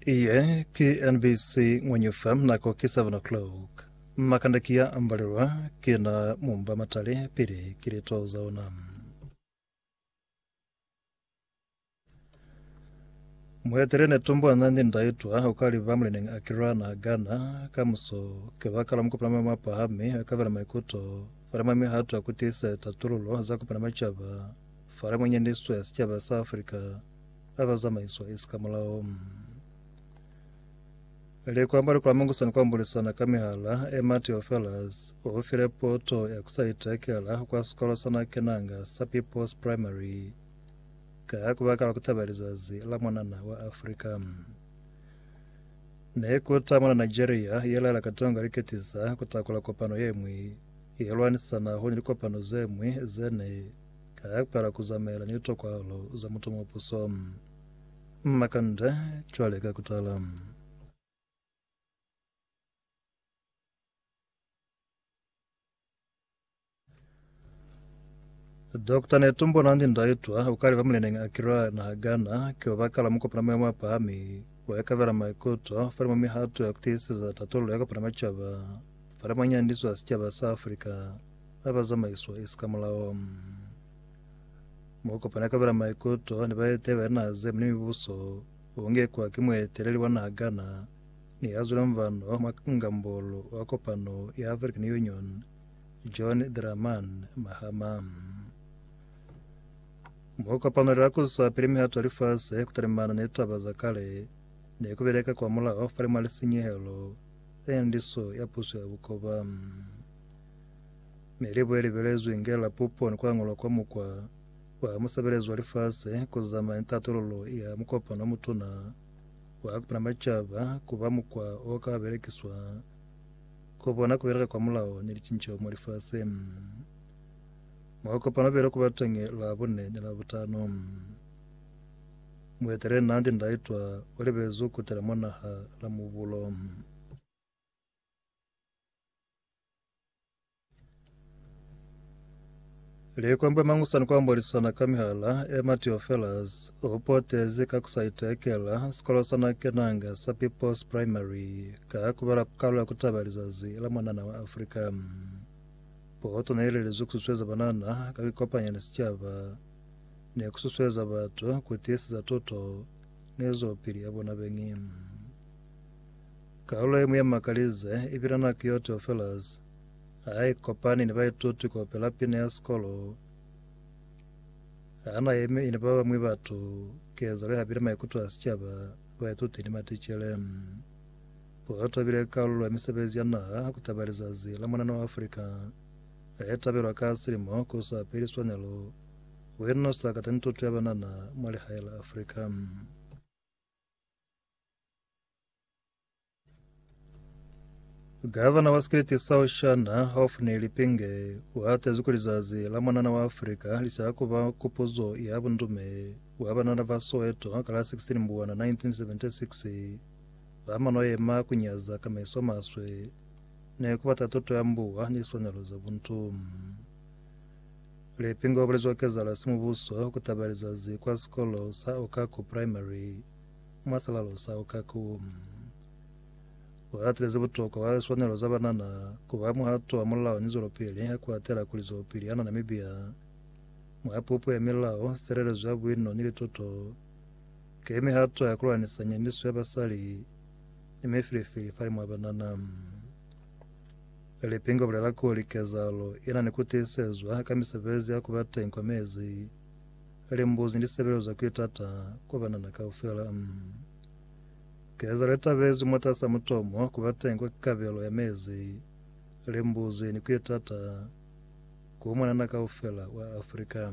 Iye ki NBC ngwenye fa nako ki 7 o'clock. Makanda ki ya ambalelwa ki na mumba matale pili ki lito za ona. Muetele ne tumbo na ni ndaitwa o ka liba mulineng Akira na Ghana ka muso ke ba kala mukupana ma mapahami ka vela maikuto fale mwa mihato ya kutisa tatululo za kupana machaba fale mwenye niswe sicaba sa Afrika ba ba zamaiswa esi ka mulao. Le kwamba le kulamangusana kuambulisana ka mihala e Mateo Fellas o file poto ya ku sa itekela kwa sikolo sa na kenanga sa People's Primary ka ku baka la ku taba lizazi la mwanana wa Afrika. Ne ku ta mwana Nigeria ye laela Katonga liketisa ku takula kopano ye mwi ye lwanisana honi likopano ze mwi ze ne ka ya kwela ku zamaela ni litokwalo za mutomuopuso. Mma kanda cwale ka kutala. Dokta Netumbo Nandi Ndaitwa o ka leba muleneng Akira naha Ghana ki obakala mukopana moya mwa pahami wa ikabela maikuto fale mwa mihato ya kutiiseza tatollo ya kopana macaba fale mwa nyandiso ya sicaba sa Afrika ba ba zamaiswa isi ka mulao. Mo kopana ka bela maikuto ni ba etela ba naha ze muni mibuso u ngekwa ki mueteleli wa naha kana ni ya zwile mvano mwa ngambolo wa kopano ya African Union John Draman Mahama. Mo kopano la kuswa pili mihato ya lifase ku talimana ni taba za kale ne ku beleka kwa mulao fa limwa lisinyehelo za nyandiso ya puso ya bukoba. Mi libo ye li belezwi inge la pupo ni ku angulwa kwa mukwa wa musebelezi wa lifasi ku zamana ni tatululo ya mukopano o mutuna wa Kupana Macaba ku ba mukwa o ka belekiswa ku bona ku beleka kwa mulao ni licinceho mwa lifasi. Mukopano bile ku ba teñi Labune ni Labutano. Mueteleli Nandi Ndaitwah u libezi ku kutela mwa naha la Mubulo. Likwembe Mangusani kwa Mbolisana ka Mihala, Emma Theofelus o potezi ka ku sa itekela sikolo sa na kenanga sa People's Primary ka ku bala kalu ya ku taba lizazi la mwanana wa Afrika. Poto ne ile lizwi ku susueza banana ka ku ikopanya ni sicaba ni ku susueza batu ku tiiseza tuto ni zwelopili ya bona beñi. Kalulo ye mu ya makalize i pilana ki yo Theophilus ha i kopani ni baituti kaupela pina ya sikolo. Ha na yemi ni ba bañwi batu, kezelo ya hapile maikuto a sicaba, baituti ni maticele. Poeto i bile kalulo ya misebezi ya naha ku taba lizazi la mwanana wa Afrika le tabelwa ka silimo ku sa peli swanelo ku inusa kateni tuto ya banana mwa lihae la Afrika. Gavana wa Sikriti sa Oshana, Hophni Lipinge, u hatezi kuli zazi la mwanana wa Afrika li sa ku ba kupuzo ya bundume bwa banana ba Soweto ka la 16 Mbuwana 1976 ba ma no yema ku nyaza ka meso a maswe ni ku bata tuto ya mbuwa ni swanelo za buntu. Lipinge u bulezwa kezahalo ya simubuso ku taba ya lizazi kwa sikolo sa Okaku Primary. Mwa silalo sa uka ku buhatile ze butokwa kwa liswanelo za banana ku ba muhato wa mulao ni zwelopili ha ku atela kuli zwelopili yana Namibia mwa pupo ya milao, silelezo ya buino ni litoto ki mihato ya kulwanisa nyaniso ya basali ni mifilifili fali mwa banana. Lipinga bulela kuli kezahalo ina ni ku tiisezwa ka misebezi ya ku ba teng kwa mezi Limbuzi li sebelezwa ki tata kwa banana kaufela. M. Keza le tabezwi mwatasaa mutomo ku ba teñi kwa kabelo ya mezi, limbuzi ni ki tata ku mwanana kaufela wa Afrika.